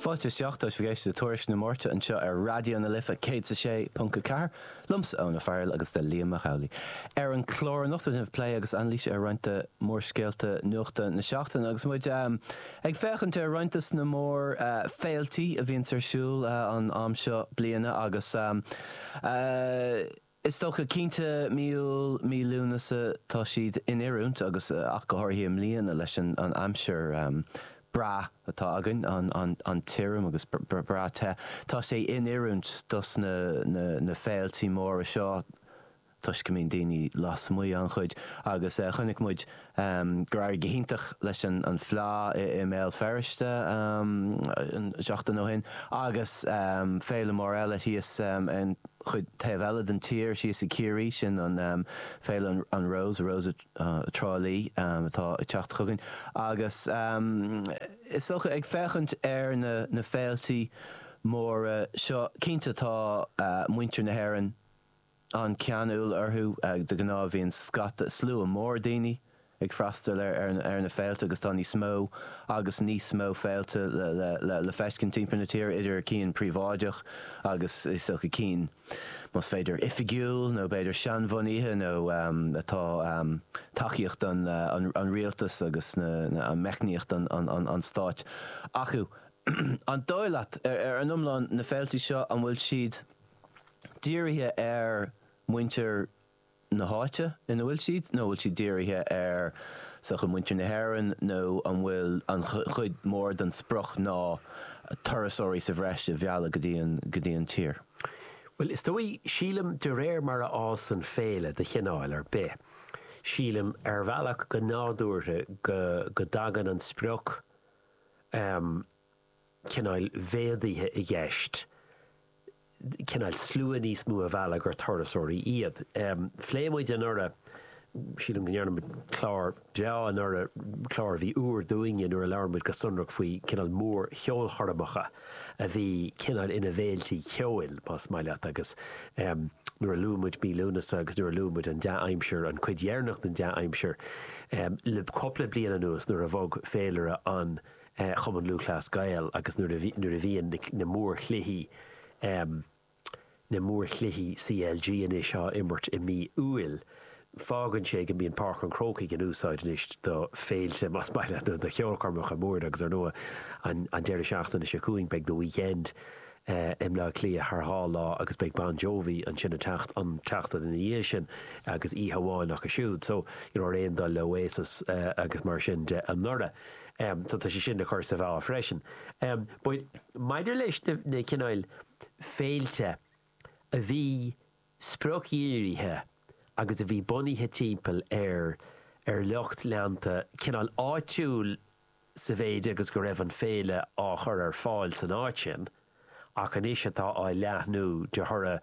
Fáilte isteach chuig eagrán eile de Tuairisc na Máirte anseo ar Raidió na Life 106.4. liomsa Eoin Ó Fearghail agus le Liam Mac Amhlaigh ar an chlár anocht tá plé agus anailís ar roinnt de mhórscéalta nuachta na seachtaine agus muid ag féachaint ar roinnt des na mór féiltí a bhíonns ar siúl an am seo bliana agus Is dócha, cinnte, mí Iúil, mí Lúnasa, tá siad in oiriúint agus ach go háirithe i mbliana leis an aimsir bhreá atá againn, an tirim agus breá te, tá sé in oiriúint dos na féiltí móra seo toisc go mbíonn daoine lasmuigh an-chuid agus chonaic muid gur éirigh go hiontach leis an Fleadh i mBéal Feirste seachtain ó shin agus féile mór eile thíos ar an chuid taobh eile den tír, thíos i gCiarraí, sin an féile An Rós, Rose Trá Lí, atá ag teacht chugainn. Agus is dócha, ag féachaint ar na féiltí móra seo, cinnte tá muintir na hÉireann, an-cheanúil orthu. De ghnáth bíonn scata, slua mór daoine ag freastal ar na féilte agus tá níos mó agus níos mó féilte le feiscint timpeall na tíre, idir cinn príobháideach agus, is dócha, cinn, más féidir, oifigiúil nó b'fhéidir seanbhunaithe nó atá tacaíocht an rialtas agus meicníocht an stáit acu. An dóigh leat, ar an iomlán, na féilte seo, an bhfuil siad. dírithe ar mhuintir na háite ina bhfuil siad, nó an bhfuil siad dírithe ar sochaí mhuintir na hÉireann, nó an bhfuil an chuid mhór den sprioc ná turasóirí sa bhreis a mhealladh go dtí an tír? Bhuel, is dóigh, sílim, de réir mar a fhásann féile de chineál ar bith, sílim, ar bhealach, go nádúrtha, go dtagann an sprioc, cineál méadaithe i gceist, cineál slua níos mó a mhealladh gur turasóirí iad. Phléigh muid anuraidh, sílim go ndearna muid clár breá anuraidh, clár a bhí úr dúinne, nuair a labhair muid go sonrach faoi cineál mór-cheolchoirmeacha a bhí cineál ina bhféiltí ceoil, más maith leat, agus nuair a luaigh muid mí Lúnasa agus nuair a luaigh muid an dea-aimsir, an chuid dheireanach den dea-aimsir le cupla bliain anuas nuair a bhog féilire an Chumann Lúthchleas Gael agus nuair a bhí, nuair a bhíonn na, na mórchluichí, na mórchluichí CLG anois á imirt i mí Iúil, fágann sé go mbíonn Páirc an Chrócaigh in úsáid anois do féilte, más maith leat, nó do cheolchoirmeacha móra agus ar ndóigh an, an deireadh seachtaine seo chugainn beidh The Weeknd i mBleá Cliath thar dhá lá agus beidh Bon Jovi ansin an tseachtain, an tseachtain ina dhiaidh sin agus oíche amháin acu siúd so, you know, ar aon dul le Oasis agus mar sin de anuraidh. Em, so tá sé sin le cur sa mheá freisin. Em, but maidir leis na, na cineáil féilte a bhí spriocdhírithe agus a bhí bunaithe timpeall ar, ar lucht leanta cineál áitiúil sa mhéid agus go raibh an féile á chur ar fáil san áit sin, ach anois atá á leathnú de thoradh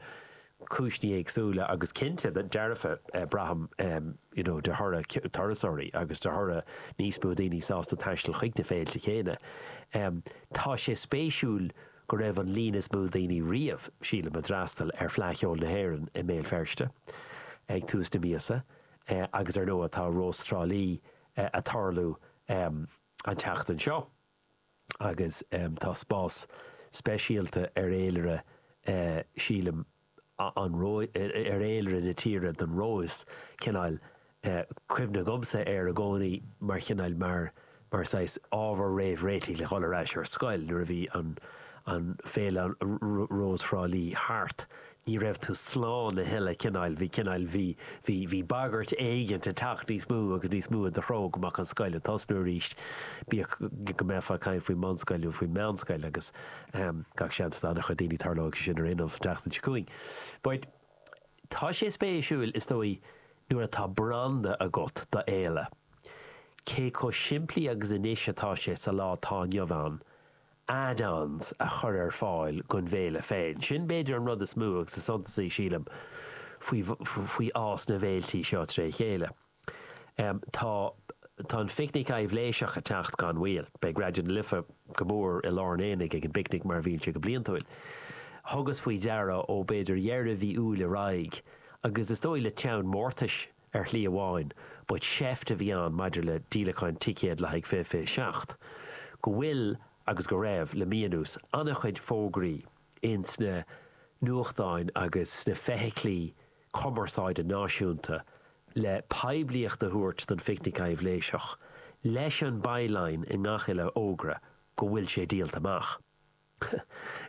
cúinsní éagsúla agus cinnte dearfa, braithim, you know de thoradh turasóirí agus de thoradh níos mó daoine sásta taisteal chuig na féilte chéanna. Tá sé spéisiúil go raibh an líon is mó daoine riamh, sílim, a d'fhreastail ar Fleadh Cheoil na hÉireann i mBéal Feirste ag tús na míosa agus ar ndóigh tá Rós Trá Lí ag tarlú an tseachtain seo. agus tá spás speisialta ar fhéilire, sílim, an ar fhéilire na tíre don Rós, cineál cuimhne agamsa air i gcónaí mar chineál, mar, mar saghas ábhar réamhréitigh le dhul ar ais ar scoil nuair a bhí an, an, féile Rós Thrá Lí thart, ní raibh tú slán a thuilleadh, cineáil, bhí, cineáil, bhí, bhí, bhí bagairt éigin ag teacht níos mó agus níos mó i do threo go mbeadh an scoil ag tosnú arís, bíodh go mbeifeá ag caint faoin mbunscoil nó faoin meánscoil agus gach seans do an-chuid daoine tarlóidh sé sin ar aon nós an tseachtain seo chugainn. But tá sé spéisiúil is dóigh nuair atá branda agat d'fhéile, cé chomh simplí agus anois atá sé sa lá atá inniu ann, add-ons a chur ar fáil don bhféile féin. Sin b'fhéidir an rud is mó agus is suntasaí, sílim, faoi fhás na bhféiltí seo tré chéile. Tá Tá an Phicnic Aibhléiseach ag teacht gan mhoill. Beidh Raidió na Life go mór i lár an aonaigh ag an bPicnic mar a bhíonn sé go bliantúil. Thugas faoi deara ó b'fhéidir dheireadh mhí Iúil ar aghaidh, agus is dóigh le teann mórtais, ar shlí amháin, but seift a bhí ann maidir le díolacháin ticéad le haghaidh fiche fiche seacht, go bhfuil, agus go raibh, le mí anuas, an-chuid fógraí ins na nuachtáin agus sna feithiclí cumarsáide náisiúnta le poiblíocht a thabhairt don Phicnic Aibhléiseach, leis an by-line i ngach uile fhógra, go bhfuil sé díolta amach.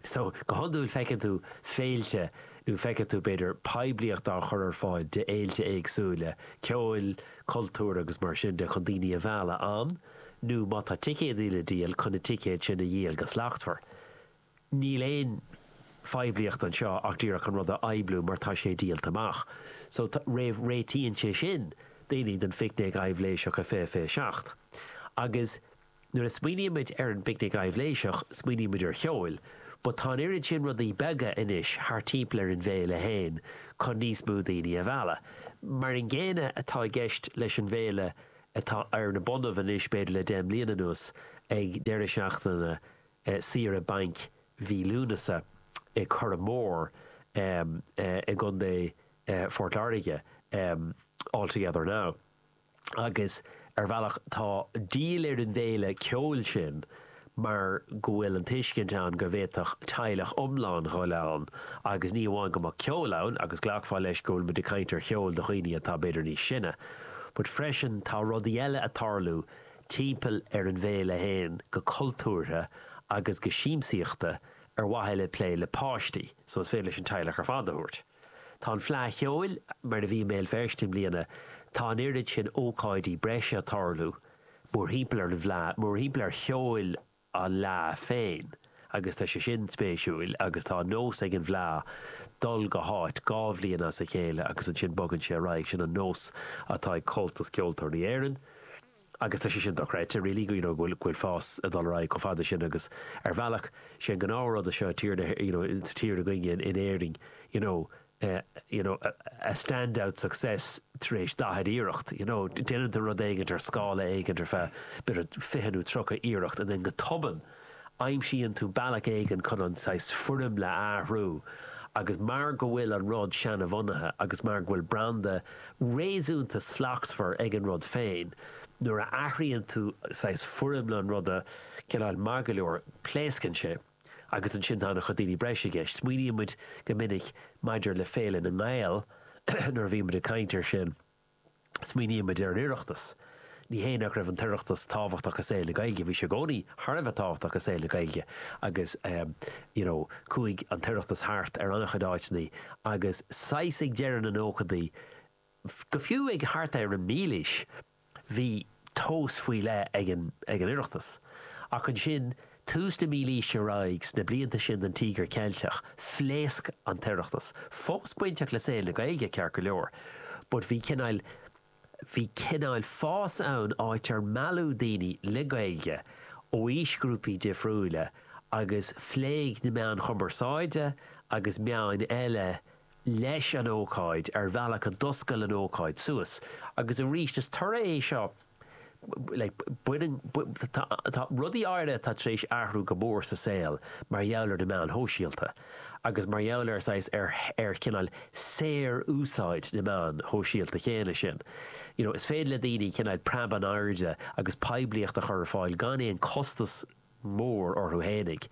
So, go hiondúil feiceann tú féilte, nó feiceann tú, b'fhéidir, poiblíocht á chur ar fáil d'fhéilte éagsúla, ceoil, cultúir agus mar sin de, chun daoine a mhealladh ann, nó má tá ticéid le díol, chun na ticéid sin a dhíol go slachtmhar. Níl aon phoiblíocht anseo ach díreach an rud a phoibliú mar tá sé díolta amach. So, tá, réamhréitíonn sé sin daoine don phicnic aibhléiseach a fiche fiche seacht. Agus. Nuair a smaoinímid ar an bPicnic Aibhléiseach, smaoinímid ar cheol, but tá an oiread sin rudaí beaga anois thart timpeall ar an bhféile féin chun níos mó daoine a mhealladh. Mar an gcéanna atá i gceist leis an bhféile atá ar na bonnaibh anois b'fhéidir le deich mbliana anuas, ag deireadh seachtaine saoire bainc mhí Lúnasa i Currach Mór i gContae Phort Láirge, All Together Now. Agus ar bhealach tá díol ar an bhféile ceoil sin mar go bhfuil an tuiscint ann go bhféadfadh teaghlach iomlán dhul ann agus ní hamháin go mbeadh ceol ann, agus ghlacfá leis go bhfuil muid ag caint ar cheol do dhaoine atá b'fhéidir níos sine, but freisin tá rudaí eile ag tarlú timpeall ar an bhféile féin go cultúrtha agus go siamsaíochta ar mhaithe le plé le páistí, so is féidir leat an teaghlach ar fad a thabhairt. Tá an Fleadh Cheoil mar a bhí i mBéal Feirste i mbliana, tá an oiread sin ócáidí breise ag tarlú mórthimpeall ar an bhFleadh, mórthimpeall ar cheol an Fhleadh féin agus tá sé sin spéisiúil agus tá an nós ag an bhFleadh dul go háit dhá bhliain as a chéile agus ansin bogann sé ar aghaidh, sin an nós atá ag Comhaltas Ceoltóirí Éireann. Agus tá sé sin dochreidte, really, you know, go bhfuil, go bhfuil fás ag dul ar aghaidh chomh fada sin agus ar bhealach, sé an gnáthrud é seo i tír na, you know, sa tír againne in, in Éirinn, you know, eh, you know, a, a stand-out success tar éis daichead iarracht, you know, déanann tú rud éigint ar scála éigint ar feadh, b'fhéidir, fiche nó tríocha iarracht and then go tobann, Aimsíonn tú bealach éigin chun an saghas foirmle a athrú agus mar go bhfuil an rud seanbhunaithe agus mar go bhfuil branda réasúnta slachtmhar ag an rud féin, nuair a athraíonn tú saghas foirmle an ruda, cineál maith go leor, pléascann sé agus ansin tá ana-chuid daoine breise i gceist. Smaoiníonn muid go minic maidir le Féile na nGael nuair a bhíonn muid ag caint ar sin. Smaoinímid ar an Oireachtas. Ní hé nach raibh an tOireachtas tábhachtach i saol na Gaeilge, bhí sé i gcónaí thar a bheith tábhachtach i saol na Gaeilge agus you know chuaigh an tOireachtas thart ar an-chuid áiteanna agus saghas ag deireadh na nóchadaí go fiú ag thart ar an mílaois, bhí tomhas faoi leith ag an Oireachtas. Ach ansin, tús na mílaoise ar aghaidh, sna blianta sin den Tíogar Ceilteach, phléasc an tOireachtas. Fós bainteach le saol na Gaeilge, ceart go leor, but bhí cineál, bhí cineál fás ann, áit ar mealladh daoine le Gaeilge ó aoisghrúpaí difriúla agus phléigh na meáin chumarsáide agus meáin eile leis an ócáid ar bhealach a d'osclaíonn an ócáid suas agus arís is toradh é seo like tá rudaí áirithe atá tar éis athrú go mór sa saol mar gheall ar na meáin shóisialta agus mar gheall ar saghas ar ar cineál saor úsáid na meáin shóisialta chéanna sin you know is féidir le daoine cineál preab in airde agus poiblíocht a chur ar fáil gan aon costas mór orthu fhéinig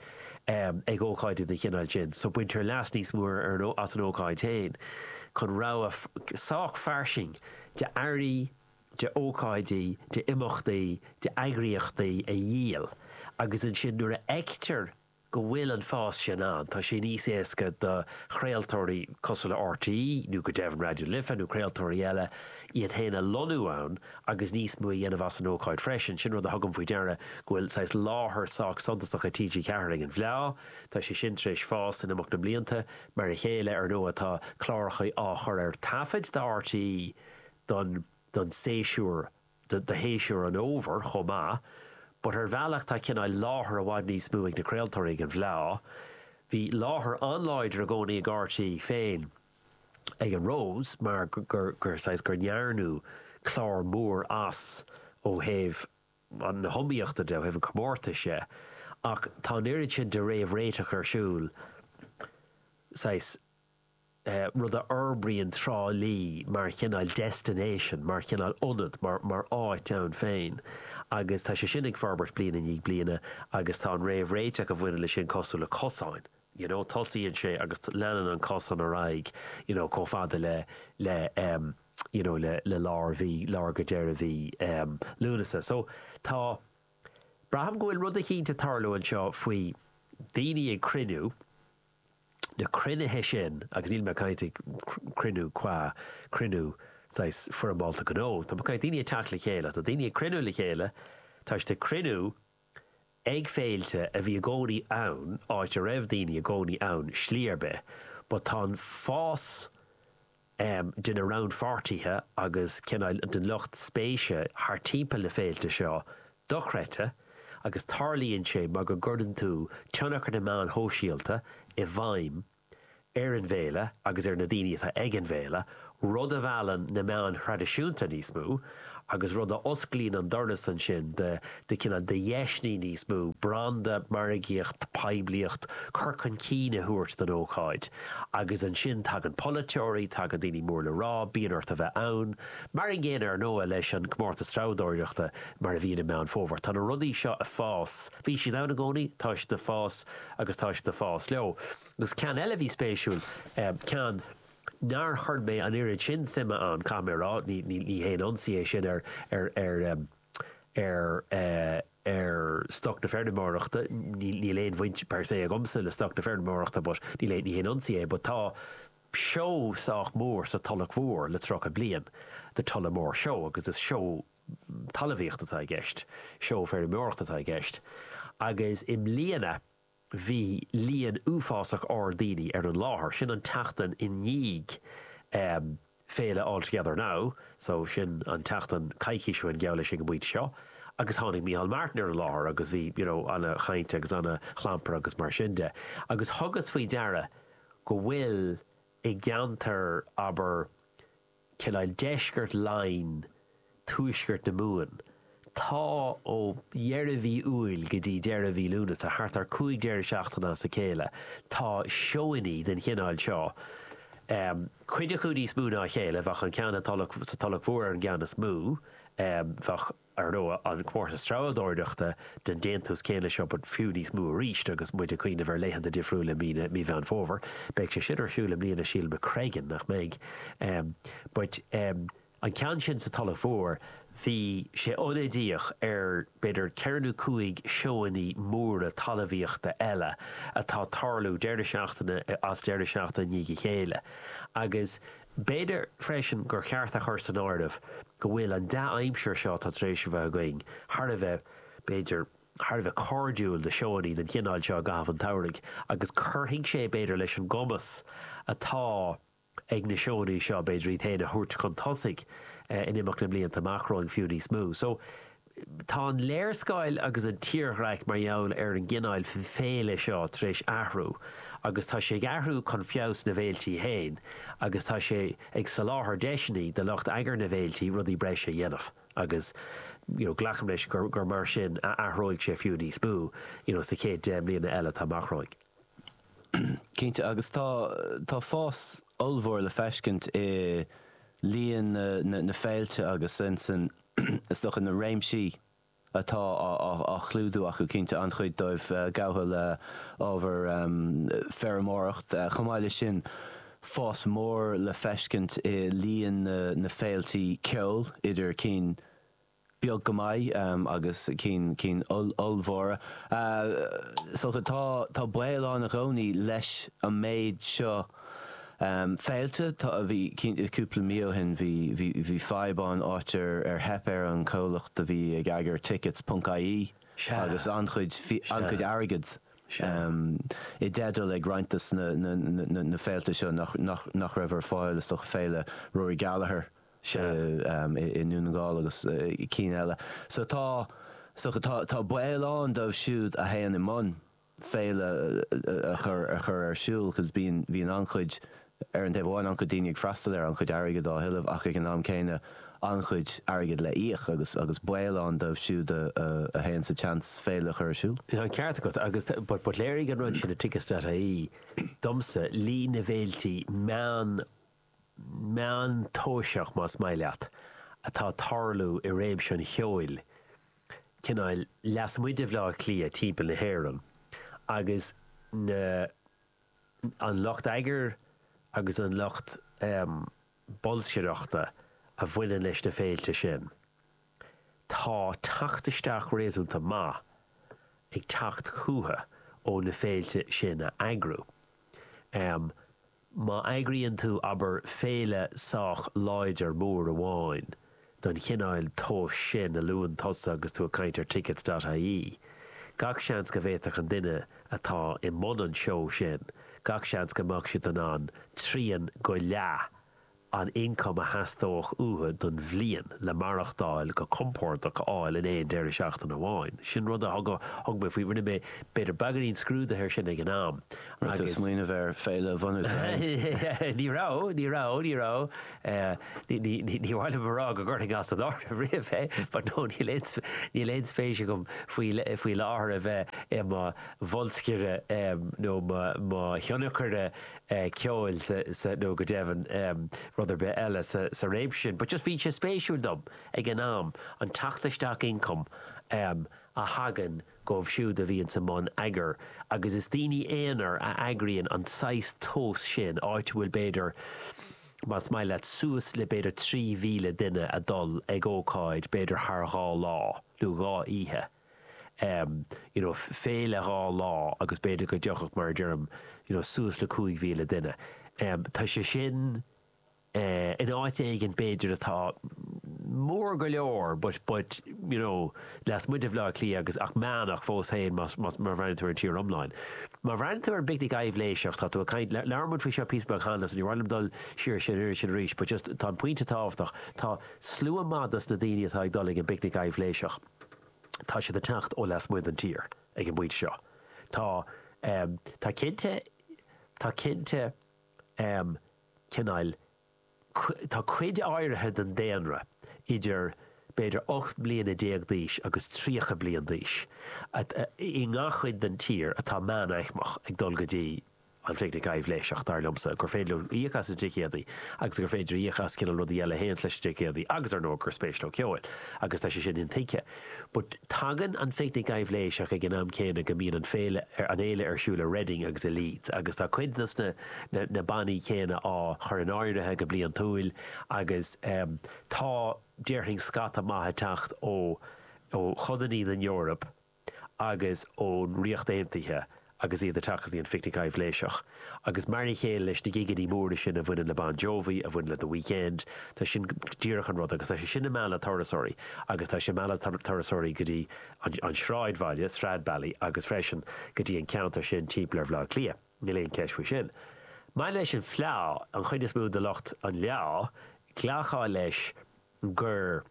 ag ócáidí den chineál sin so baintear leas níos mó arís as an ócáid féin chun rogha sách fairsing de earraí, de ócáidí, de imeachtaí, de eagraíochtaí a dhíol agus ansin nuair a fheictear go bhfuil an fás sin ann tá sé níos éasca do chraoltóirí cosúil le RTÉ nó go deimhin Raidió Life nó craoltóirí eile iad féin a lonnú ann agus níos mó a dhéanamh as an ócáid freisin. Sin rud a thugaim faoi deara go bhfuil saghas láthair sách suntasach ag TG4 ag an bhFleá. Tá sé sin tar éis fás in imeacht na mblianta. Mar a chéile, ar ndóigh, tá cláracha á chur ar taifead do RTÉ don don séasúr do do shéasúr an fhómhair chomh maith. But ar bhealach tá cineál láthair i bhfad níos mó ag na craoltóirí ag an bhFleá. Bhí láthair an-láidir i gcónaí ag RTÉ féin. ag an Rose mar saghas, gur ndearnadh clár mór as ó thaobh na hiomaíochta de, ó thaobh an chomórtais dhe ach tá an oiread sin de réamhréiteach ar siúl, saghas, rud a fhorbraíonn Trá Lí mar chineál destination, mar chineál ionad, mar áit ann féin agus tá sé sin ag forbairt bliain i ndiaidh bliana agus tá an réamhréiteach a bhaineann leis sin cosúil le cosáin. you know, tosaíonn sé agus leanann an cosán ar aghaidh you know chomh fada le, le em, you know le, le lár mhí, lár go deireadh mhí em, Lúnasa. So, tá, braithim go bhfuil rud eicínt ag tarlú anseo faoi daoine ag cruinniú, na cruinnithe sin, agus níl mé ag caint ag cruinniú cua, cruinniú saghas foirmeálta gnó, tá mé ag caint daoine ag teacht le chéile, tá daoine ag cruinniú le chéile, tá siad ag cruinniú, Ag féilte a bhí i gcónaí ann, áit a raibh daoine i gcónaí ann slí ar bith, but tá an fás de na rannpháirtithe agus cineál den lucht spéise thart timpeall na féilte seo dochreidte agus tarlaíonn sé mar go gcuireann tú tionchar na meáin shóisialta i bhfeidhm ar an bhféile agus ar na daoine atá ag an bhféile, rud a mheallann na meáin thraidisiúnta níos mó agus rud a osclaíonn an doras ansin do, do cineál, do dheiseanna níos mó branda, margaíocht, poiblíocht, cur chun cinn a thabhairt don ócáid. Agus ansin tagann polaiteoirí, tagann daoine mór le rá, bíonn ort a bheith ann. Mar an gcéanna, ar ndóigh, leis an gcomórtas treabhdóireachta mar a bhíonn i Meán Fómhair. Tá na rudaí seo ag fás, bhí siad ann i gcónaí, tá siad ag fás, agus tá siad ag fás leo. Agus ceann eile a bhí spéisiúil, ceann nár chuir mé an oiread sin suime ann, caithfidh mé a rá, ní haon ionsaí é sin ar stoc na feirmeoireachta, níl aon bhaint per se agamsa le stoc na feirmeoireachta but ní haon ionsaí é, but tá seó sách mór sa Tulach Mhór le tríocha bliain, The Tullamore Show, agus is seó talamhaíocht atá i gceist, seó feirmeoireachta atá i gceist agus i mbliana bhí líon uafásach ard daoine ar an láthair, sin an tseachtain i ndiaidh féile All Together Now so sin an tseachtain coicís ó shin geall leis ag an bpointe seo agus tháinig Micheál Martin ar an láthair agus bhí you know an-chaint agus an-chlampar agus mar sin de agus thugas faoi deara go bhfuil i gceantar abair cineál deisceart Laighin, tuaisceart na Mumhan. Tá ó dheireadh mhí Iúil go dtí deireadh mhí Lúnasa, thart ar 5 deireadh seachtaine as a chéile, tá seónnaí den chineál seo, cuid acu níos mó ná a chéile, bheadh an ceann sa Tulach Mhór ar an gceann is mó, bheadh. Ar ndóigh, an comórtas treabhdóireachta den déantús céanna seo but fiú níos mó arís agus muid ag cuimhneamh ar laethanta difriúla mí na, mí Mheán Fómhair, beidh sé sin ar siúl i mbliana sílim, i Screggan, nach mbeidh? em but em an ceann sin sa Tulach Mhór bhí sé ionadaíoch ar b'fhéidir ceithre nó cúig seónnaí móra talamhaíochta eile atá ag tarlú deireadh seachtaine as deireadh seachtaine i ndiaidh a chéile agus eh, B'fhéidir freisin gur cheart a chur san áireamh go bhfuil an dea-aimsir seo atá tar éis a bheith againn thar a bheith, b'fhéidir, thar a bheith cairdiúil do sheónnaí den chineál seo i gcaitheamh an tsamhraidh agus cuirfidh sé, b'fhéidir, leis an gcumas atá ag na seónnaí seo, b'fhéidir, iad féin a thabhairt chun tosaigh in imeacht na mblianta amach romhainn fiú níos mó. So. Tá an léarscáil agus an tírdhreach mar gheall ar an gcineáil féile seo tar éis athrú agus tá sé ag athrú chun feabhas na bhféiltí féin agus tá sé ag soláthar deiseanna do lucht eagair na bhféiltí rudaí breise a dhéanamh agus you know glacaim leis gur mar sin a athróidh sé fiú níos mó you know sa chéad deich mbliana eile atá amach romhainn. Cinnte agus tá tá fás ollmhór le feiscint i líon na na na féilte agus in san is dócha, na réimsí atá á chlúdú acu, cinnte, an-chuid dóibh gafa le ábhar feirmeoireacht. Chomh maith leis sin, fás mór le feiscint i líon na féiltí ceoil, idir cinn beag go maith agus cinn cinn ollmhóra. Is dócha, tá baol ann i gcónaí leis an méid seo, Féilte, tá, bhí, cinnte, cúpla mí ó shin bhí, bhí, bhí fadhb ann, áit ar, ar theip ar an chomhlacht a bhí ag eagair Tickets ponc IE Sea. agus an-chuid, Sea. an-chuid airgead Sea. i dteideal ag roinnt de na, na, na, na, na féilte seo nach, nach, nach raibh ar fáil, is dócha Féile Rory Gallagher Sea. i, i nDún na nGall agus cinn eile. So tá, is dócha, tá, tá baol ann dóibh siúd a théann i mbun, féile a chur ar siúl cos bíonn an-chuid, ar an taobh amháin, an-chuid daoine ag freastal air, an-chuid airgid á thuilleamh ach ag an am céanna an-chuid airgid le íoc agus agus baol ann dóibh siúd a théann sa tseans féile a chur ar siúl. Tá an ceart agat agus but but léirigh an rud sin i Tickets.ie domsa líon na bhféiltí meán, meántoiseach, más maith leat, atá ag tarlú i réimse an cheoil, cineál lasmuigh de Bhleá Cliath timpeall na hÉireann, agus na, an lucht eagair agus an lucht bolscaireachta a bhaineann leis na féilte sin. Tá teacht isteach réasúnta maith ag teacht chucu ó na féilte sin a eagrú. Má eagraíonn tú, abair, féile sách láidir mór amháin den chineál tomhais sin a luann tusa agus tú ag caint ar tickets.ie, gach seans go bhféadfadh an duine atá i mbun an tseó sin, gach seans go mbeadh siad in ann trian go leath an ioncam a theastódh uathu don bhliain le maireachtáil go compordach a fháil in aon deireadh seachtaine amháin. Sin rud a thug, thug mé faoi, rinne mé b'fhéidir beagáinín scrúdaithe ar sin ag an am Raibh tú ag agus. smaoineamh ar féile a bhunú féin? Ní raibh, ní raibh, ní raibh, ní, ní, ní, ní mhaith liom a rá go gcuirfinn as an áireamh riamh é but no níl aon, níl aon spéis agam faoi, faoi láthair a bheith i mo bholscaire nó mo, mo thionchaire ceoil sa, nó go deimhin rud ar bith eile sa réimse sin, but just bhí sé spéisiúil dom ag an am an teacht isteach ioncaim a thagann dóibh siúd a bhíonn i mbun eagair agus is daoine aonair a eagraíonn an saghas tomhas sin, áit a bhfuil b'fhéidir, más maith leat, suas le b'fhéidir trí mhíle duine ag dul ag ócáid b'fhéidir thar dhá lá nó dhá oíche. you know féile dhá lá agus b'fhéidir go dtiocfadh mar a deirim you know suas le 5,000 duine. Tá sé sin in áit éigin b'fhéidir atá mór go leor but but you know lasmuigh de Bhaile Átha Cliath agus ach meánach fós féin más má, má bhreathnaíonn tú ar an tír iomlán. Má bhreathnaíonn tú ar an bPicnic Aibhléiseach tá tú ag caint labhair muid faoi seo píosa beag cheana so níor mhaith liom dul siar air sin arís but just tá an pointe tábhachtach tá slua maith dos na daoine atá ag dul ag an bPicnic Aibhléiseach tá siad ag teacht ó lasmuigh den tír ag an bpointe seo. Tá, em, tá cinnte, tá cinnte, em, cineál, tá cuid áirithe den daonra idir b'fhéidir ocht mbliana déag d'aois agus tríocha bliain d'aois i ngach cuid den tír atá meánaicmeach ag dul go dtí, an phicnic aibhléiseach, dar liomsa, gur féidir leo íoc as na ticéadaí agus gur féidir íoc as cineál rudaí eile a théanns leis na ticéadaí agus, ar ndóigh, gur spéis leo ceoil agus tá sé sin intuigthe. But tagann an phicnic aibhléiseach ag an am céanna go mbíonn an féile, an fhéile ar siúl i Reading agus i Leeds agus tá cuid des na, na bannaí céanna á chur in áirithe go bliantúil agus tá, déarfainn, scata maith ag teacht ó, ó chodannaí den Eoraip. agus ón Ríocht Aontaithe agus iad ag teacht go dtí an Phicnic Aibhléiseach. Agus mar a chéile leis na gigeannaí móra sin a bhaineann le Bon Jovi, a bhaineann le The Weekend, tá sin díreach an rud agus tá sé sin ag mealladh turasóirí agus tá sé ag mealladh turasóirí go dtí an sráidbhaile, Stradbally, agus freisin go dtí an ceantar sin timpeall ar Bhaile Átha Cliath, níl aon cheist faoi sin. Maidir leis an fleá, an chuid is mó de lucht an fhleá, glacfá leis gur.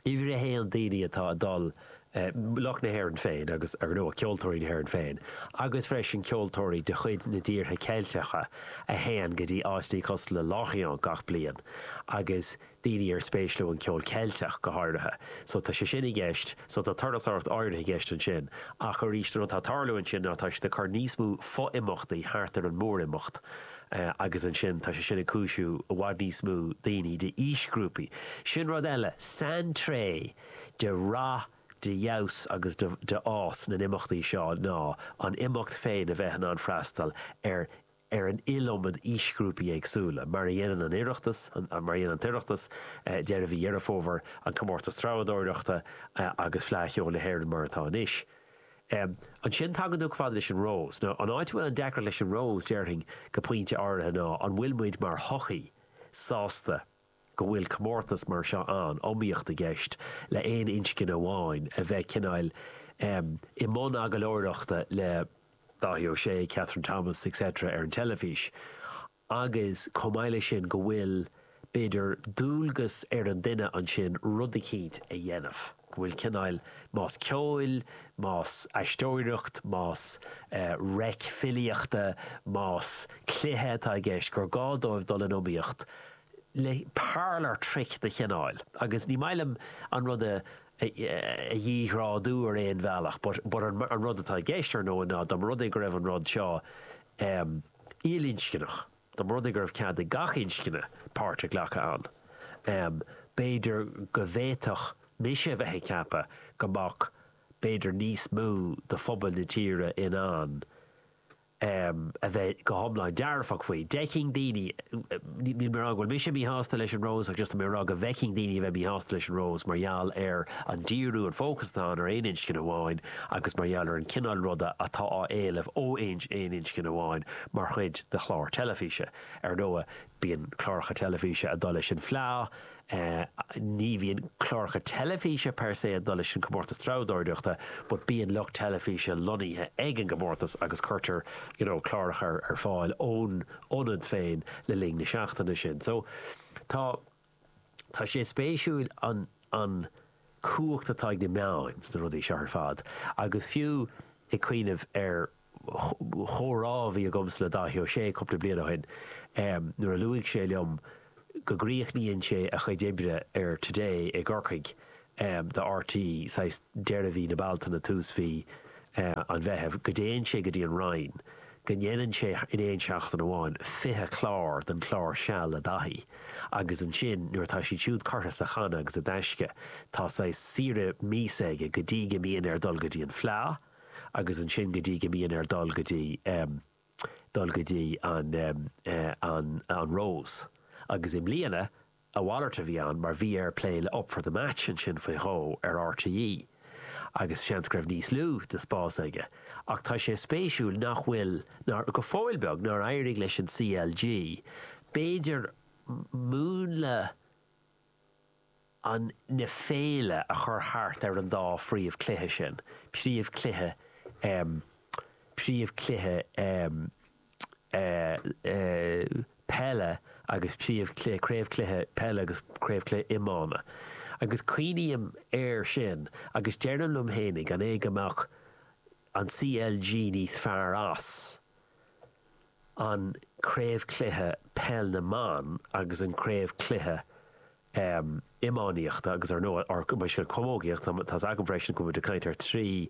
Uimhir a haon, daoine atá ag dul, lucht na hÉireann féin agus, ar ndóigh, ceoltóirí na hÉireann féin, agus freisin ceoltóirí de chuid na dtíortha Ceilteacha a théann go dtí áiteanna cosúil le Lorient gach bliain, agus daoine ar spéis leo an ceol Ceilteach go háirithe. So tá sé sin i gceist, so tá turasóireacht áirithe i gceist ansin, ach arís, an rud atá ag tarlú ansin ná tá siad ag cur níos mó fo-imeachtaí thart ar an mór-imeacht, agus ansin tá sé sin ag cúisiú i bhfad níos mó daoine d'aoisghrúpaí. Sin rud eile, saintréith de rath, de fheabhas agus de de fhás na n-imeachtaí seo ná an imeacht féin a bheith in ann freastal ar ar an iliomad aoisghrúpaí éagsúla, mar a dhéanann an Oireachtas, mar a dhéanann an tOireachtas, deireadh mhí Dheireadh Fómhair, an Comórtas Treabhadóireachta agus Fleadh Cheoil na hÉireann mar atá anois. Em. Ansin tagann tú chomh fada leis an Rose. Nó an áit a bhfuil an deacracht leis an Rose, déarfainn go pointe áirithe ná an bhfuil muid mar shochaí sásta go bhfuil comórtas mar seo ann, iomaíocht i gceist le aon inscne amháin a bheith cineáil em i mbun agallóireachta le Dáithí Ó Sé, Kathryn Thomas etc ar an teilifís. agus chomh maith leis sin go bhfuil, b'fhéidir, dualgas ar an duine ansin rud eicínt a dhéanamh, go bhfuil cineál, más ceoil, más aisteoireacht, más reic filíochta, más cluiche atá i gceist, gur gá dóibh dul in iomaíocht le parlour trick de chineál, agus ní maith liom an rud a dhíghrádú ar aon bhealach but an rud atá i gceist, ar ndóigh, ná dá mba rud é go raibh an rud seo, ilinscneach, dá mba rud é go raibh cead ag gach inscne páirt a ghlacadh ann, b'fhéidir go bhféadfadh mise a bheith ag ceapadh go mbeadh b'fhéidir níos mó de phobal na tíre in ann a bheith go hiomlán dearfach faoi. D'fheicfinn daoine. Níl mé ag rá go bhfuil mise míshásta leis an Rose ach just tá mé ag rá go bhfeicfinn daoine a bheith míshásta leis an Rose mar gheall ar an díriú, an fócas atá ann ar aon inscne amháin agus mar gheall ar an gcineál ruda atá á éileamh ó aon inscne amháin mar chuid de chlár teilifíse. Ar ndóigh, bíonn cláracha teilifíse ag dul leis an bhFleadh, Ní bhíonn cláracha teilifíse per se ag dul leis an gComórtas Treabhdóireachta but bíonn lucht teilifíse lonnaithe ag an gComórtas agus cuirtear you know cláracha ar fáil ón ionad féin le linn na seachtaine sin. So tá tá sé spéisiúil an an chumhacht atá ag na meáin sna rudaí seo ar fad agus fiú ag cuimhneamh ar chomhrá a bhí agamsa le Dáithí Ó Sé cúpla bliain ó shin nuair a luaigh sé liom go gcríochnaíonn sé a chuid oibre ar Today i gCorcaigh do RTÉ, saghas deireadh mhí na Bealtaine, tús mhí an Mheithimh, go dtéann sé go dtí an Rinn, go ndéanann sé in aon seachtain amháin 20 clár den chlár Seal le Dáithí agus ansin nuair atá siad siúd curtha sa channa agus i dtaisce tá saghas saoire míosa aige go dtí go mbíonn air dul go dtí an Fleadh agus ansin go dtí go mbíonn air dul go dtí, dul go dtí an, an, an Rose. Agus i mbliana, a mhalairt a bhí ann mar bhí air plé le Up for the Match ansin faoi dhó ar RTÉ agus seans go raibh níos lú de spás aige. Ach tá sé spéisiúil nach bhfuil, nár, go fóill beag, nár éirigh leis an CLG b'fhéidir múnla, an na féile a chur thart ar an dá phríomhchluiche sin, príomhchluiche ehm príomhchluiche ehm eh eh peile agus príomhchluiche craobhchluiche peile agus craobhchluiche iomána agus cuimhním air sin agus deirim liom fhéinig an é go mbeadh an CLG níos fearr as an craobhchluiche Peil na mBan agus an craobhchluiche iománaíochta agus ar ndóigh, or bhuel, is camógaíocht, tá's agam freisin go bhfuimid ag caint ar trí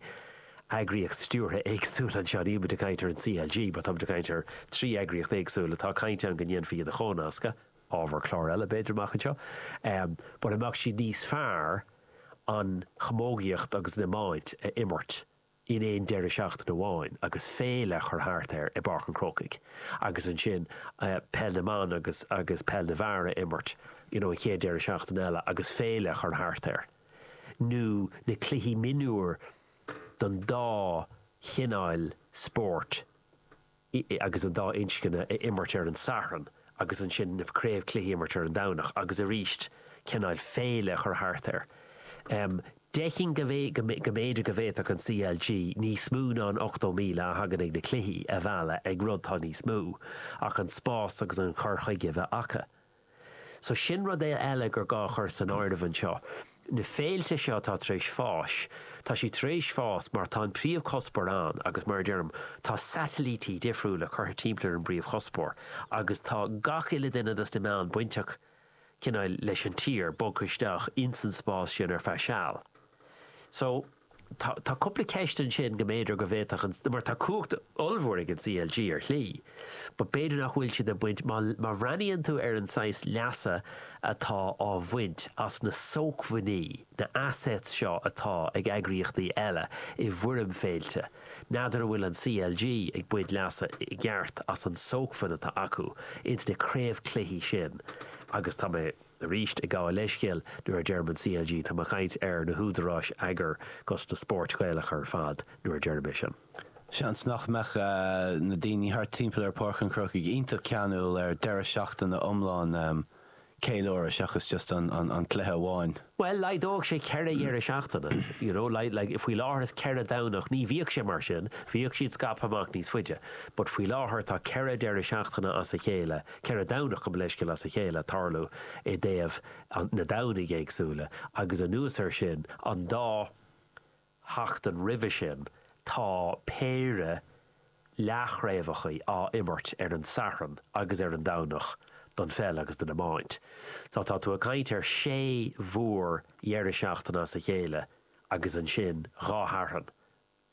eagraíocht stiúrtha éagsúil anseo, nílimid ag caint ar an CLG mar táimid ag caint ar trí eagraíocht éagsúil atá caint ann go ndéanfaí iad a chomhnascadh, ábhar cláir eile b'fhéidir amach anseo, but an mbeadh siad níos fearr an chamógaíocht agus an iomáint a imirt in aon deireadh seachtaine amháin agus féile a chur thart air i bPáirc an Chrócaigh agus ansin peil na mban agus agus peil na bhfear a imirt you know an chéad deireadh seachtaine eile agus féile a chur thart air nó na cluichí mionúir don dá chineál spóirt agus an dá inscne a imirt ar an Satharn agus ansin na craobhchluichí a imirt ar an Domhnach agus arís cineáil féile a chur thart air. D'fheicinn go go mb'fhéidir go bhféadfadh an CLG níos mó ná an 80,000 a thagann ag na cluichí a mhealladh ag rud atá níos mó ach an spás agus an cur chuige a bheith acu. So sin rud eile gur gá a chur san áireamh anseo. Na féilte seo atá tar éis fás, tá siad tar éis fás mar tá an príomhchuspóir ann agus mar a deirim, tá satailítí difriúla curtha timpeall ar an bpríomhchuspóir agus tá gach uile duine dos na meáin bainteach cineál leis an tír bogtha isteach ins an spás sin ar feadh seal. So. Tá tá cúpla ceist ansin go mb'fhéidir go bhféadfadh an, mar tá cumhacht ollmhór ag an CLG ar shlí, but b'fhéidir nach bhfuil siad ag baint, má má bhreathnaíonn tú ar an saghas leasa atá á bhaint as na sócmhainní, na assets seo atá ag eagraíochtaí eile i bhfoirm féilte, n'fheadar an bhfuil an CLG ag baint leasa i gceart as an sócmhainn atá acu ins na craobhchluichí sin agus tá mé, Aríst ag gabháil leithscéil nuair a deirim an CLG, táim ag caint ar na húdaráis eagair 'gus na spóirt Ghaelacha ar fad nuair a deirim é sin. Seans nach mbeadh na daoine thart timpeall ar Pháirc an Chrócaigh iontach ceanúil ar deireadh seachtaine iomlán ceiliúrtha seachas just an cluiche amháin. Bhuel, laghdódh sé ceithre dheireadh seachtaine, you know, like faoi láthair is ceithre Domhnach, ní bhíodh sé mar sin, bhíodh siad scaipthe amach níos faide, but faoi láthair tá ceithre deireadh seachtaine as a chéile, Ceithre Dhomhnach gabh mo leithscéal as a chéile ag tarlú i dtaobh na Domhnaigh éagsúla agus anuas ar sin an dá sheachtain roimhe sin tá péire leathchraobhacha á imirt ar an Satharn agus ar an Domhnach don pheil agus don iomáint. So tá tú ag caint ar shé mhór dheireadh seachtaine as a chéile agus ansin dhá Shatharn.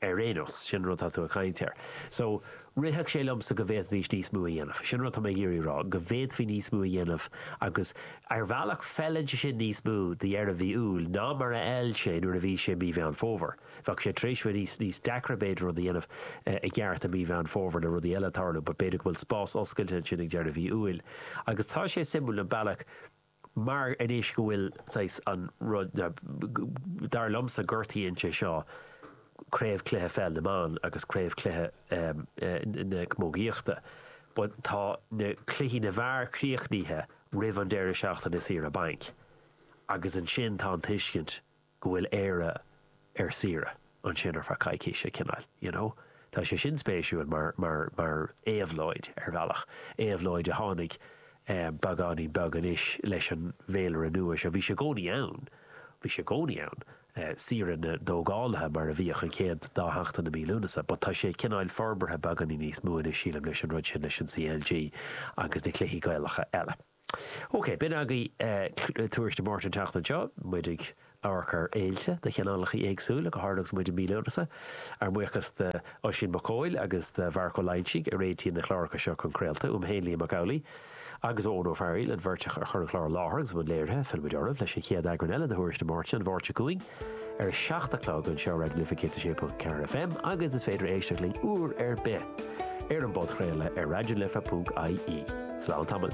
ar aon nós, sin an rud atá tú ag caint air. So, rithfeadh sé liomsa go bhféadfaidís níos mó a dhéanamh. Sin an rud atá mé ag iarraidh a rá, go bhféadfaí níos mó a dhéanamh agus ar bhealach feileann sin níos mó do dheireadh mhí Iúil ná mar a fheil sé nuair a bhí sé mí Mheán Fómhair. Bheadh sé tar éis bheith níos, níos deacra b'fhéidir rud a dhéanamh i gceart i mí Mheán Fómhair le rudaí eile ag tarlú but b'fhéidir go bhfuil spás oscailte ansin ag deireadh mhí Iúil. Agus tá sé suimiúil an bealach, Mar anois go bhfuil, saghas, an rud, dar liomsa, gortaíonn sé seo Craobhchluiche Pheil na mBan agus Craobhchluiche na Camógaíochta. But tá na cluichí na bhfear críochnaithe roimh an deireadh seachtaine saoire bainc agus ansin tá an tuiscint go bhfuil Éire ar saoire ansin ar feadh coicíse, cineál, you know. Tá sé sin spéisiúil mar, mar, mar éabhlóid, ar bhealach. Éabhlóid a tháinig beagáinín beag anois leis an bhféilire nua seo. Bhí sé i gcónaí ann, bhí sé i gcónaí ann, saoire na dtógálaithe mar a bhíodh an chéad dá sheachtain i mí Lúnasa, but tá sé, cineál, forbartha beagáinín níos mó anois, sílim, leis an rud sin, leis an CLG agus na cluichí Gaelacha eile. OK, b'in agaibh Tuairisc na Máirte an tseachtain seo. Muid ag amharc ar fhéilte de chineálacha éagsúla, go háirithe agus muid i mí Lúnasa. Ár mbuíochas d'Oisín Mac Cóil agus do Mharc Ó Loingsigh a réitíonn na cláracha seo chun craolta, uaim féin Liam Mac Amhlaigh, agus ó Eoin Ó Fearghaíl, an bheirt a chur an clár i láthair agus a bhí i mbun léirithe, fillfimid oraibh leis an chéad eagrán eile de thuairisc na Máirte an Mháirt seo chugainn. ar a seacht a chlog anseo ar Raidió na Life 106.4 FM agus is féidir éisteacht linn uair ar bith ar an bpodchraoladh ar raidionalife.ie. Slán tamall.